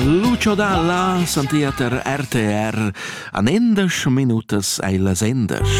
Lucio Dalla santia ter RTR an endasch minutas ei las endasch.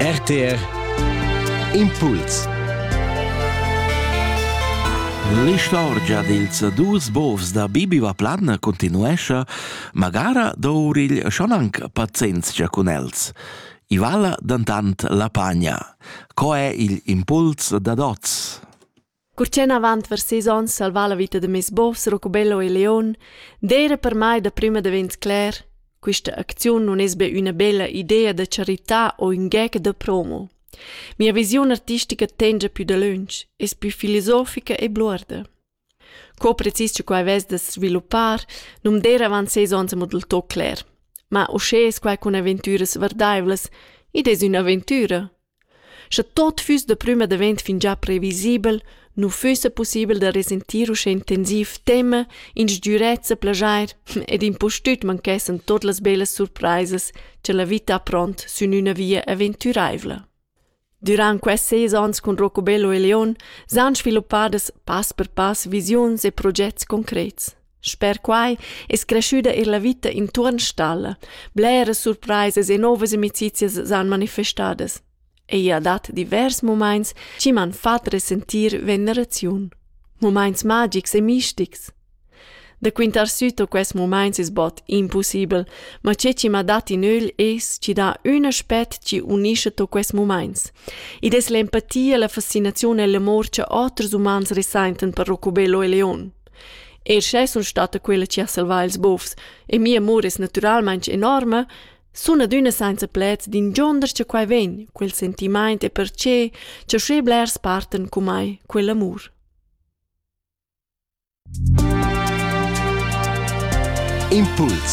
RTR Impuls L'istorgia dils dus bovs da Bibi Vaplanna continuescia, magara dourigl schon anc pazienzia cun els. I vala dantant la pagna. Co è il impuls da dots? Cur ch'en avant vers sis onns salvà la vita da mes bovs Rocobello e Leon, d'eira per mai daprüma davent cler, quista acziun nun es be üna bella idea da charità o ün gec da promo. Mia visiun artistica tengia pü dalöntsch, es plü filosofica e bluorda. Co precis che quai vess da sviluppar, nu'm d'eira avant ses ons amo del tot cler. Ma uschè es quai cun aventüras vardaivlas, id es ün'aventüra. Sche tot füss da prüma davent fingià previsibel, nu füssa pussibel da resentir uschè intensiv tema, instgürezza, plaschair ed impustüt manchessan tuot las bellas surpraisas cha la vita ha pront sün üna via aventüraivla. Dürant quests seis ons cun Rocobello e Leon s'han sviluppadas pass per pass visiuns e progets concrets. Sper quai es creschüda eir la vita intuorn stalla. Bleras surpraisas e nouvas amicizias s'han manifestadas. Ella dat divers mumaints chi m'han fat resentir veneraziun. Mumaints magics e mistics. Da quintar süto quest mumaints es bod impussibel, ma che chi m'ha dat in ögl es chi dà ün aspet chi unischa to quest mumaints. Id es l'empatia, la fascinaziun e l'amor cha oters umans resaintan per Rocco Bello e Leon. E sche sun stata quella chi ha salvà ils bufs e mia amur es natüralmaing enorma, sun adüna sainza pleds d'ingionder cha quai vegn, quel sentimaint e perche cha sche blers partan cun mai quell'amur. Impuls